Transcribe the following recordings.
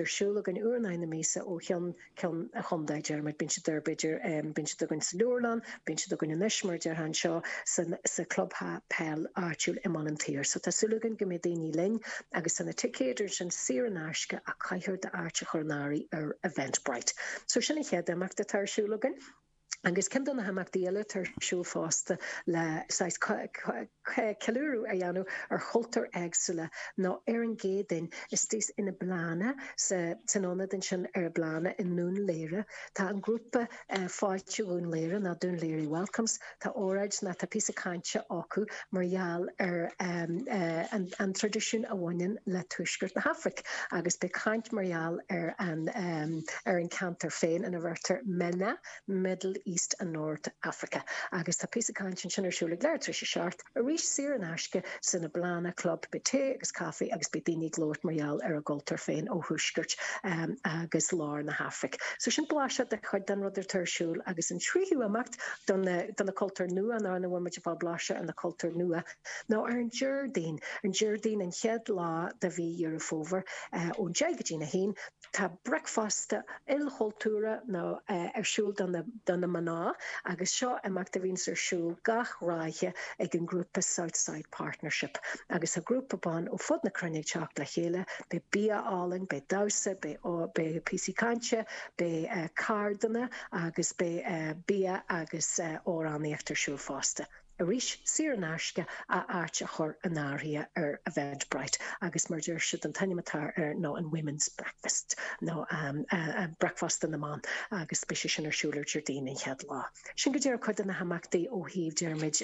ar siúl againn i rith na míosa ó cheann ceann an chontae. Diarmuid, Bíonn siad idir idir bíonn siad againn sa leabharlann, bíonn siad againn anois mar a déarfá anseo san sa club peile áitiúil i mBaile an tSaoir so tá súil againn go mbeidh daoine linn agus tá na ticéid ansin saor in aisce ach caithfear d'áit a chur in áirithe ar Eventbrite. So sin an chéad imeacht atá ar siúl againn. Agus ceann de na himeachtaí eile atá ar siúl fosta le saghas ceiliúradh a dhéanamh ar chultúir éagsúla ná ar an gCéadaoin istoíche in Eblana, san ionad ansin ar Eblana i nDún Laoghaire, tá an grúpa Fáilte Dhún Laoghaire, ná Dún Laoghaire Welcomes, tá óráid ná tá píosa cainte acu. mar gheall ar an traidisiún a bhaineann le tuaisceart na hAfraice agus beidh caint mar gheall ar an ceantar féin ina ndeirtear MENA, Middle East and North Africa, agus tá píosa cainte ansin ar siúl ag leathuair tar éis a seacht arís saor in aisce san Eblana Club. Beidh tae agus caife agus beidh daoine ag labhairt mar gheall ar a gcultúr féin ó thuaisceart agus lár na hAfraice. So sin blaiseadh de chuid den rud atá ar siúl agus an tríú imeacht, do na cultúir nua ná ina bhfuil muid ag fáil blaiseadh ar na cultúir nua ná ar an Déardaoin. Ar an Déardaoin, an chéad lá de mhí Dheireadh Fómhair, ón deich go dtí a haon, tá bricfeasta ilchultúrtha ar siúl do na mná agus seo imeacht a bhíonns ar siúl gach ráithe ag an ghrúpa Southside Partnership agus tá grúpa ban ó fud na cruinne ag teacht le chéile. Beidh bia álainn, beidh damhsa, beidh píosaí cainte, beidh ceardlanna. agus beidh bia agus amhránaíocht ar siúl fosta. Arís, saor in aisce a áit a chur in áirithe ar Eventbrite agus mar a deir siad an t-ainm atá air ná an Women's Breakfast nó Bricfeasta na mBan agus beidh sé sin ar siúl ar Déardaoin an chéad lá. Sin go díreach cuid de na himeachtaí ó thaobh Diarmuid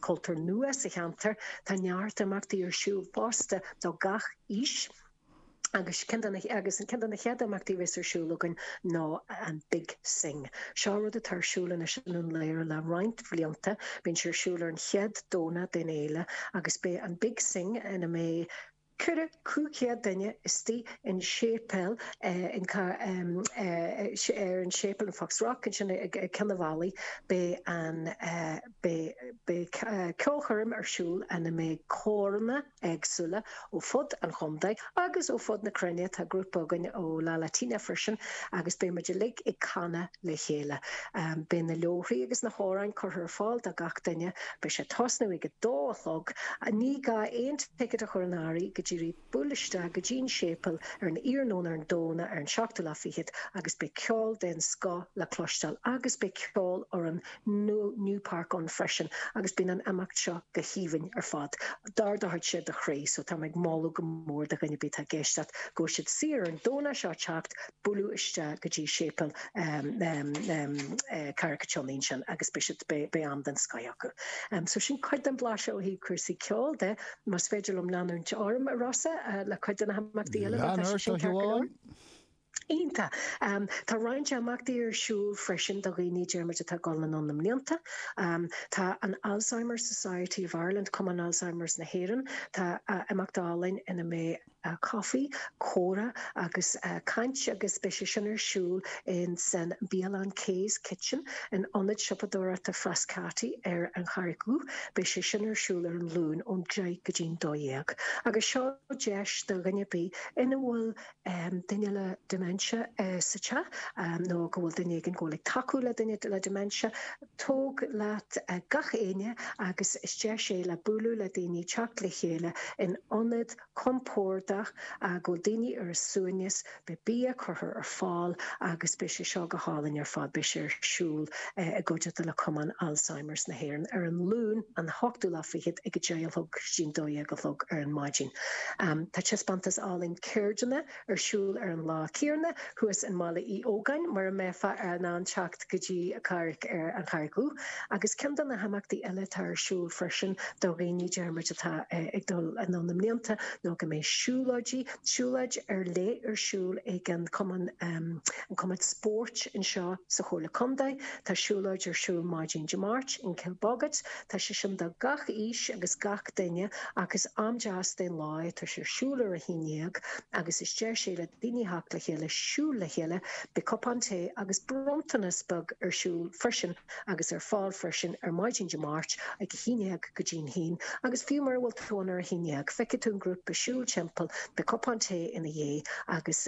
cultúir nua sa cheantar. Tá neart imeachtaí ar siúl fosta do gach aois. Agus ceann de na chéad imeachtaí a bheas ar siúl againn ná an Big Sing. Seo rud atá ar siúl anois i nDún Laoghaire le roinnt blianta. Bíonn sé ar siúl ar an chéad Domhnach den fhéile agus beidh an Big Sing ina mbeidh ceithre, cúig chéad duine istigh in séipéal in, ar an séipéal in Foxrock ansin ag Cill a' Bhallaigh. Beidh an, beidh ceolchoirm ar siúl ina mbeidh córanna, éagsúla ó fud an chontae agus ó fud na cruinne. Tá grúpa againn ó La Latina freisin agus beidh muid uilig ag canadh le chéile. Beidh na leabhraí agus na hamhráin curtha ar fáil do gach duine. Beidh sé ag tosnú ag a dó a chlog. Ní gá aon ticéad a chur in áirithe go díreach. Buail isteach go dtí'n séipéal ar an iarnóin ar an Domhnach ar an seachtú lá fichead agus beidh ceol den scoth le cloisteáil agus beidh ceol orainn nó New Park ann freisin agus bíonn an imeacht seo go haoibhinn ar fad. D'ardódh sé do chroí so táim ag moladh go mór do dhuine 'bith atá ag éisteacht go bhfuil siad saor ar an Domhnach seo teacht, bualadh isteach go dtí séipéal Carraig an tSionnaigh ansin agus beidh siad, beidh am den scoith acu. So sin cuid den bhlaiseadh ó thaobh cúrsaí ceoil de. Más féidir liom leanúint orm, a Rossa, le cuid de na himeachtaí eile, má tá sé sin ceart go leor? iontach. Tá roinnt imeachtaí ar siúl freisin do dhaoine Diarmuid atá ag dul anonn i mblianta. Tá an Alzheimer Society of Ireland, Cumann Alzheimer's na hÉireann, tá imeacht álainn ina mbeidh coffee, comhrá agus caint agus beidh sé sin ar siúl in san bialann Kay's Kitchen in Ionad Siopadóireachta Frascati ar an Charraig Dhubh. Beidh sé sin ar siúl ar an Luan ón deich go dtí'n dó dhéag agus seo deis do dhuine bith ina bhfuil duine le dementia sa teach nó go bhfuil duine éigin go bhfuil ag tacú le duine le dementia, tóg leat gach éinne agus is deis é le bualadh le daoine, teacht le chéile in ionad compordach go bhfuil daoine ar a suaimhneas, beidh bia curtha ar fáil agus beidh sé seo go hálainn ar fad. Beidh sé ar siúl i gcuideachta le Cumann Alzheimers na hÉireann ar an Luan an hochtú lá fichead ag a deich a chlog go dtí'n dó dhéag a chlog ar an maidin. Tá taispeántas álainn. ceirdeanna ar siúl ar an lá céanna thuas i mBaile Uí Ógáin, mura mbeifeá in ann teacht go dtí Carraig ar an Charraig Dhubh, agus ceann de na himeachtaí eile atá ar siúl freisin do dhaoine Diarmuid atá ag dul anonn i mblianta ná go mbeidh siúlóidí, siúlóid ar leith ar siúl ag an chumann, an cumann spóirt anseo sa Chomhairle Contae, tá siúlóid ar siúl maidin Dé Máirt in Kilbogget, Tá sé sin do gach aois agus gach duine ach is am deas den lá é, tá sé ar siúl ar a haon dhéag agus is deis é le daoine theacht le chéile, siúl le chéile, beidh cupán tae agus bronntanas beag ar siúl freisin agus ar fáil freisin ar maidin Dé Máirt ag a haon dhéag go dtí'n haon agus fiú mura bhfuil tú ann ar a haon dhéag feicfidh tú an grúpa ag siúl timpeall, beidh cupán tae ina dhiaidh agus.